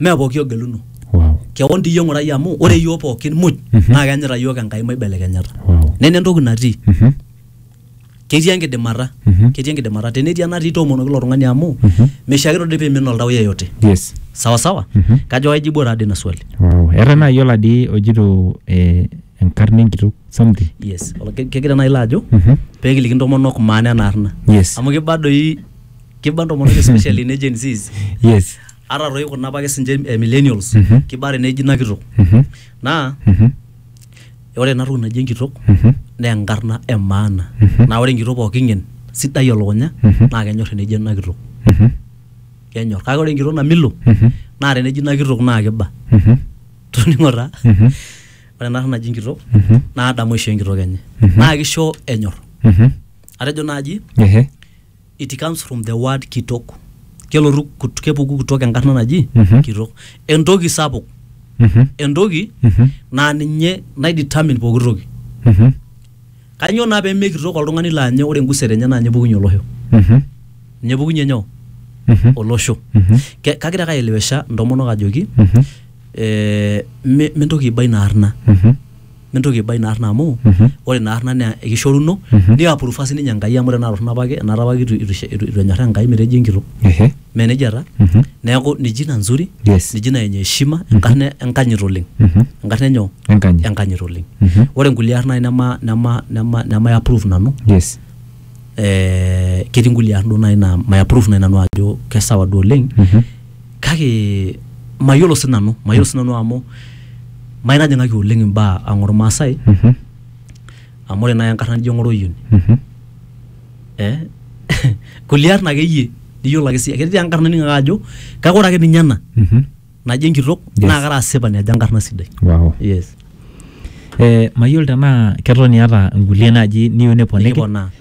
mee pooki ogeluno wow kewon diyie ng'urai amu ore iyiook pookin muj Mhm. naa kenyita iyiook enkai maibelekenyata wow nena entoki natii Mhm. ketii enkidimata Mhm. ketii enkidimata tenetii enatii toomonoki ilo tung'ani amu Mhm. meishiakino dii piimin oltau yeyote yes sawa sawa Mhm. kajo aijibuo taadii ina swali wow eeta naaji oladi ojito eh, enkarna enkitok something yes Olo- ke- kegira naaji ilo ajo Mhm. peekiliki intomonok maana ena arna yes amu kiba doi kiba ntomonok especially ne Gen Zs yes ata toi kuna apake sinche eh, millennials Mhm. kiba teneji ina kitok Mhm. naa Mhm. ore ena toki naji enkitok Mhm. naa enkarna e maana Mhm. naa ore enkitok pooki ng'en sidai elukunya Mhm. naa kenyor teneji ena kitok Mhm. kenyor kake ore enkitok namilo Mhm. naa teneji ina kitok naa kiba Mhm. toning'o taa Mhm. ore ena naji enkitok Mhm. naa adamu aisho enkitok enye Mhm. naa kisho enyor Mhm. atejo naaji Ehe. It comes from the word kitok. Kelotu kut- kepuku kitok enkarna naji Mhm. kitok. Entoki sapuk, Mhm. entoki Mhm. naa ninye nai determine pooki toki. Mhm. Kanyoo naa pee mekitok oltung'ani laa nye ore enguset enye naa ninye epukunye olosho. Mhm. Ninye epukunye nyoo? Mhm. Olosho. Mhm. Ke- Kagira ake aelewesha intomonok ajoki Mhm. eh, mi- mintoki aiba ina arna. Mhm. mintoki aiba ina arna amu ore ina arna naa ekishoruno niapurufa sininye Enkai amu tenaa torrono apake enaata apake itu itu ishe- itu- itu enyorraa Enkai metejo enkitok Ehe. mee nejia taa neeku ni jina nzuri Yes. ni jina yenye heshima enkarna enkanyit oleng enkarna enyoo Enkanyit. enkanyit oleng Mhm. ore nkulie arn nai nema nema nema nemai approve nanu Yes. eh, ketii nkulie arn duo nai naa mai approve nai nanu ajo kesawa duo oleng Mhm. kake mayiolo si nanu mayiolo si nanu amu maitajing'aki oleng imbaa ang ormaasai Mhm. amu ore naaji enkarna nijo ng'oroyioni Mhm. eh? kulie arn akeyie niyiolo ake siyie ketii enkarna nining ake ajo kake ore ake ninye ena Mhm. naji enkitok Yes. naa kara asipani ajo enkarna sidai Wow. yes Eh, mayiolo tenaa keton iata nkulie naaji niyieu niponiki nikiponaa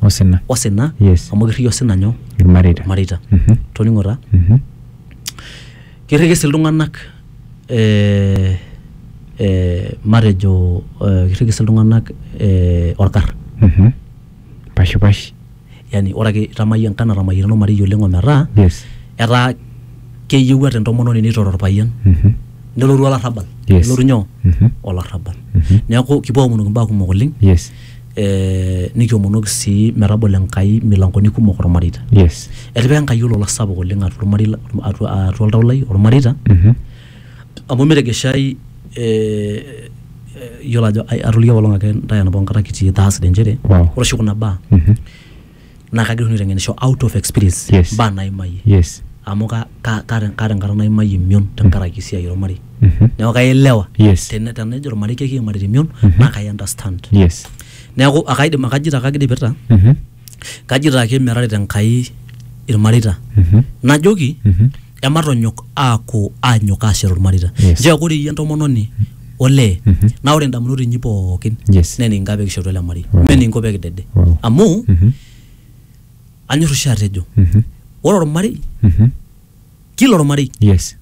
Osina. osina Yes. amu kirriki osina nyoo Ilmareita. mareita Mhm. toning'o taa Mhm. kirriki sii iltung'anak eh, eh, matejo eh, kirriki sii iltung'anak eh, orkar Mhm. Pashipash. yani ore ake itamayie enkan natamayiana ormarei oleng ometaa Yes. etaa keyieu ata entomononi neitore orpayian Mhm. nelotu olarrabal Yes. nelotu nyoo Mhm. olarrabal Mhm. neeku kipuo aomonoki imbaa kumok oleng Yes. eh, nikiomonoki sii metabolo Enkai milangoni kumok ormareita yes etipika Enkai olola sapuk oleng atua ormarei la- atua atua oltau lai ormareita Mhm. amu metegeshai eh, eh, yiolo ajo ai- atoliki apaelong ake ntae enapa kata kitii Thursday inchere Wow. ore oshi kuna baa Mhm. naa kagira oshi nanu aiteng'enisho out of experience Yes. mbaa naimayie yes amu ka- ka- kaata kaata enkata naimayie emion tenkaraki esiai ormarei Mhm. neeku kaelewa Yes. Tene- tenejo ormarei kekiim imarita emion naa kai understand yes neeku akaidim akajito ake agira aipirta Mhm. kajito ake merarita enkai irmareita Mhm. najoki Mhm. ematonyok aaku aanyok aashet olmareita Yes. njoo eaku ore iyie entomononi olee Mhm. naa ore indamunot inyi pookin Yes. naa enikinkaa pee kishetu ele marei Wow. mee enikinko pee kidede Wow. amu Mhm. anyor oshi atejo Mhm. ore olmarei Mhm. kila olmarei Yes.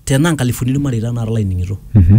tenaa nkalifuni ilmareita naara laining'ito Mhm.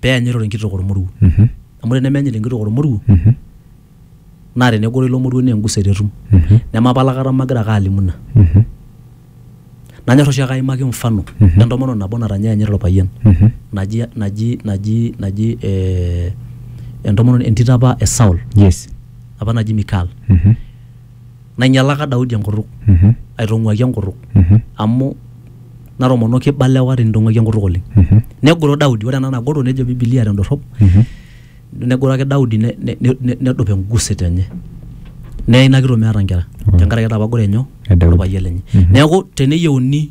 peyanyit enkitok ormoruo mhm. amu tenemeyanyit enkitok ormoruo mhm. naa tenegoro ilo moruo naa enguset etum mhm. nemapala kata magira ake alimu ina nanyor oshi ake aimaki mfano entomononi nabo natanyayanyit orpayian naji naji naji naji eh, entomononi entito apa e Saul yes apa naji Mikal nainyalaka Daudi enkutuk, aitong'uaki enkutuk, amu natomonoki iba lewa tinitong'uaki enkutuk oleng. Negoro Daudi, ore ena nagoro nejo Biblia tendorrop, negoro ake Daudi ne- ne- ne- nedup enguset enye. Neye ina kitok meeta nkera tenkaraki etapagore nyoo? Edaudi. Orpayian lenye. Neeku teneyieuni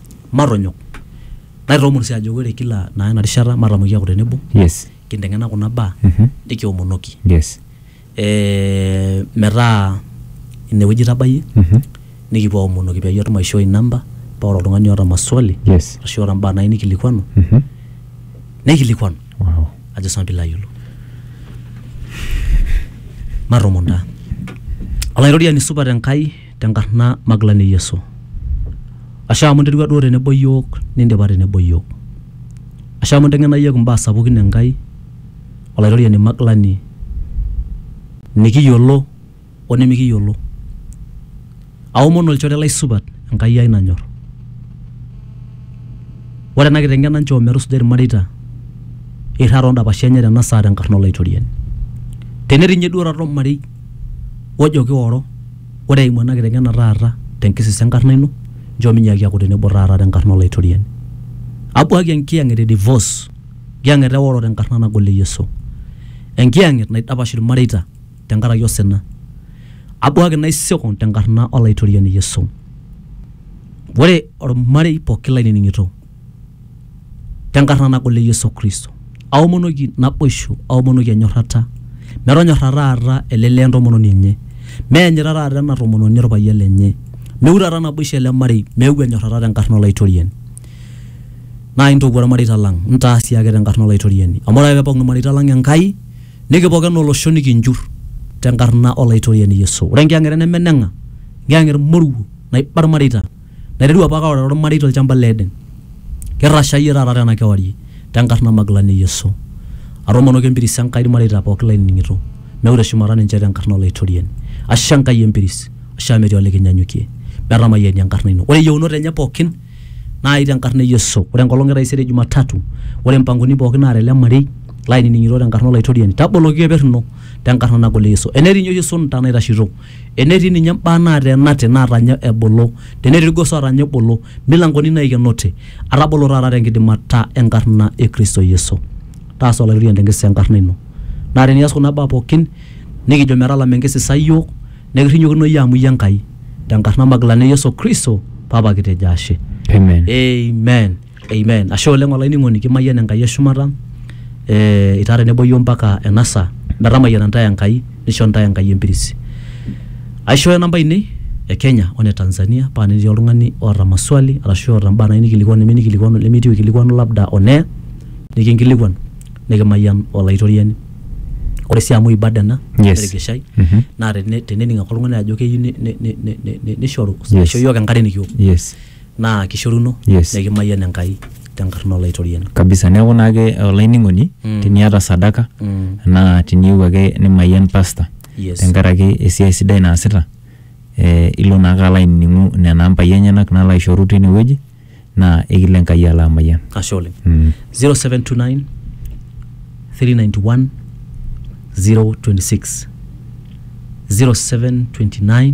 matonyok naitoomon sii ajo ore kila naa ena rishata matamoki aaku tenebo yes kinteng'ena kuna baa Mhm. nikiomonoki yes eh, metaa inewueji itabayie Mhm. nikipuo aomonoki peyie atum aishoi inamba paa ore oltung'ani oota maswali yes ashu oota mbaa nayieu nikilikuanu Mhm. neikilikuanu wow ajo sinanu piilo ayiolou matoomon taa olaitoriani supat enkai tenkarna magilani e Yesu. Ashe amu interua duo tenebo iyiook nindipa tenebo iyiook. Ashe amu inteng'ena iyiook imbaa sapukin e Nkai, Olaitoriani magilani nikiyiolo o nimikiyiolo. Aomon olchore lai supat Enkai ai nanyor. Ore ena kiteng'ena nchoo metusuja ilmareita eirrag too ndapashi enye tena saa tenkarna Olaitoriani. Tenetii ninye duo taata olmarei ojo kioro. Ore eimu ena kiteng'ena taata te nkisisa e nkarna ino, nchoo minyaaki aaku tenebo taata te nkarna o Laitoriani. Abuaki enkiyang'et e divos, enkiyang'et e woro te nkarna nagol e Yesu. Enkiyang'et naidapash ilmareita te nkaraki osina. Abuaki naisiko te nkarna o Laitoriani Yesu. Ore olmarei pooki lainining'ito. tenkarna nagol e Yesu Kristo. Aomonoki naboisho, aomonoki enyorrata. Metonyorra taata ele lee entomononi enye. Meenyita taata ena tomononi orpayian lenye. Meu taata naboisho ele marei, meeu enyorrata tenkarna Olaitoriani. Naa intopuo irmareita lang, intaa sii ake tenkarna Olaitoriani. Amu ore ake peepok irmareita lang Enkai, nikipok enaa olosho nikinjur tenkarna Olaitoriani Yesu. Ore enkiyang'et neme eneng'a, enkiyang'et moruo naiba irmareita naiterua apake aorare olmarei tolchamba le Eden. Kirrasha iyie taata tena kewarie tenkarna Magilani e Yesu. Atoomonoki empiris e Nkai ilmareita pooki lainining'ito meure shumata ninche tenkarna Olaitoriani. Ashe Enkai empiris, ashe amu metii olikinyanyukie. Metamayiani enkarna ino. Ore iyieunot enye pooki naai tenkarna e Yesu. Ore enkolong e taisere Jumatatu, ore mpangoni pooki naata ele marei lainining'ito tenkarna Olaitoriani, taboloki keper ino tenkarna nagol e Yesu. Enetii ninye oshi esunta naitashito Enetii ninye mbaa naata enate naatanya ebulu, tenetii ilgoso ootanya ebulu, milankoni naikenote, atabolo taata te nkidimata e nkarna e Kristo Yesu. Taasa Olaitoriani te nkisisa e nkarna ino. Naa teni ias kuna baa pooki nikijo metalama enkisisa iyiook nekirrinyokino iyie amu iyie Enkai te nkarna magilani e Yesu Kristo, Papa kitejo ashe. Amen. Amen. Ashe oleng olainining'oni kimayian Enkai e shumata eh, itaa tenebo iyiook mpaka ena saa metamayiana ntae Enkai nisho ntae Enkai empiris. Aishooyo namba ainei e Kenya o ne Tanzania paa tenetii oltung'ani oota maswali arashu oota mbaa nayieu nikilikuanu nemeyieu nikilikuanu nemetii oikilikuanu labda on air nikinkilikuan nikimayian Olaitoriani. Ore sii amu ibada ena Yes. nemetigishai Mhm. naa tene- tenening ake oltung'ani ajo keyieu ni- ni- ni- ni- ni- nishoru Yes. aisho iyiook enkare nikiwok. Yes. naa kishoruno Yes. nikimayian Enkai tenkarna Olaitoriani. kabisa neeku naake olainining'oni Mm. teniata sadaka Mm. naa tiniyieu ake nimayian pasta Yes. tenkaraki esiai sidai naasita eh, ilo naake alo ainining'u nena ampai enyenak nalo aishoru tine wueji naa ekilo Enkai alo amayian Ashe oleng. mm. 0729 391 026 0729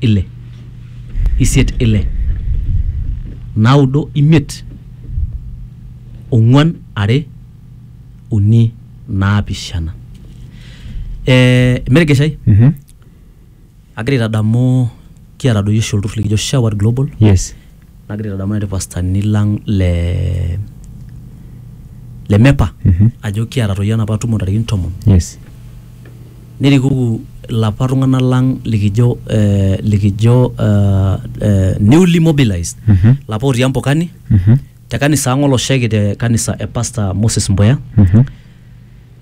ile isiet ile naudo imiet ong'uan are uni naapishana eh, merigeshai Mhm. agira aitadamu kiata doi oshi olturrur likijo Shower Global yes Nagira aitadamu nai irpastani lang' le le MEPA Mhm. ajo kiata toi enapa tumo ntarikini tomon, Yes. nerikoki ilapa tung'anak lang' likijo eh, likijo ah, eh, newly mobilized Mhm. ilapa otii Ambokani Mhm. te kanisa ang' olosheki te kanisa e Pastor Moses Mbuya Mhm.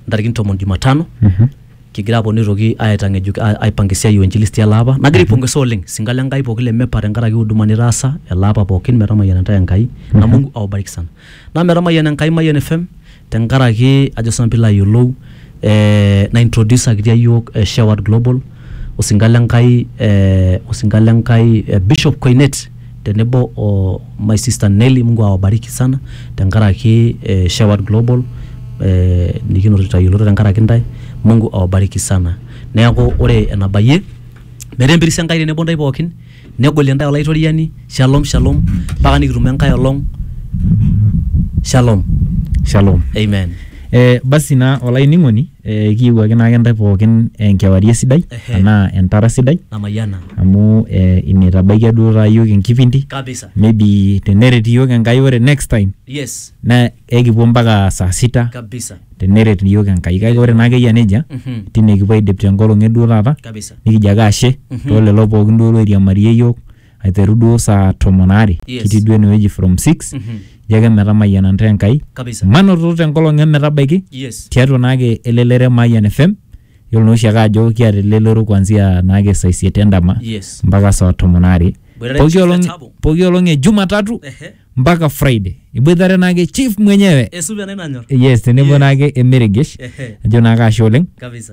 ntarikini tomon Jumatano. Mhm. Kigira aponu aitoki aitang'ejuk aipanga esiai o injilisti ele apa. Nagira aipongesa oleng singa le Nkai pooki le MEPA tenkaraki huduma nitaasa ele apa pooki metamayiana intae Enkai na Mungu awabariki sana. Naa metamayiana Enkai Mayian FM tenkaraki ajo sii nanu piilo ayiolou ee naintrodusakita iyiok Sheward Global osinka le Nkai ee osinka le Nkai Bishop Koinet. tenebo o my sister Nelly Mungu awabariki sana tenkaraki eh, Shepherd Global eh, nikinoto itayioloto tenkaraki ntae Mungu awabariki sana neeku ore enabayie metaa empiris Enkai tenebo ntae pookin negolie ntae olaitoriani shalom shalom mpaka nikitumo enkae olong shalom Shalom. amen Eh, basi naa olainining'oni Eh, kiiwuaki naake ntae pookin enkewarie sidai Ehe. anaa entara sidai Namayiana. amu eh, ina itabaikia duo taa iyiook enkipindi Kabisa. maybe teneret iyiook Enkai ore next time Yes. naa ekipuo mpaka saa sita Kabisa. teneret iyiook Enkai kake ore naake eyia nejia Mhm. tine kipuo aidip tenkolong e duo taata Kabisa. nikijo ake ashe Mhm. too lelo pookin duo loiriamarie iyiook aiteru duo saa tomon aare Yes. kitii duo enewueji from 6 Mhm. ijo ake metamayiana ntae Enkai Kabisa. manoto tenkolong emetabaiki Yes. tiatua naake elelero e Mayian FM yiolo naa oshiake ajo kiata elelero kuanzia naake saa isiet endama Yes. mpaka saa tomon aare Boitare Pooki Chief olong- Letabo. pooki olong e Jumatatu Ehe. mpaka Friday iboitare naake chief mwenyewe Esupe nai nanyor. yes tenebo Yes. naake emeregesh Ehe. ajo naake ashe oleng Kabisa.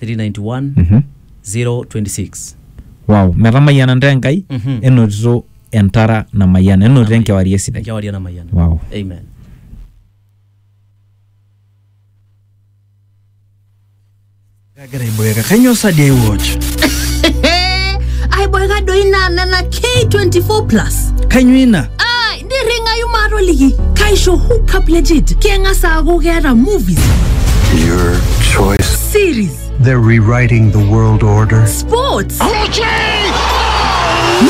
391 Mhm. 026 wow metamayiana ntae enkai Mhm. enotito entara namayiana enotito enkewarie sidai enkewarie namayiana wow amen Kagira aiboeka. Kainyoo sa dei watch? aiboeka doi naa nena k24 plus Kainyoo ina? nirringayu maatoliki kaisho hookup legit keng'as aaku keeta movies Your choice. series They're rewriting the world order. sports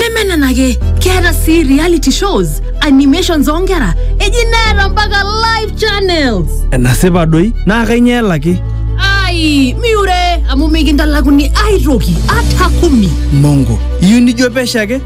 neme nena ake keeta sii reality shows animations oonkera eji neeta mpaka live channels enasipa doi naa kainyoo elaki ai miure amu mikintalakuni aitoki ata kumi mongo iyieu nijo pesho ake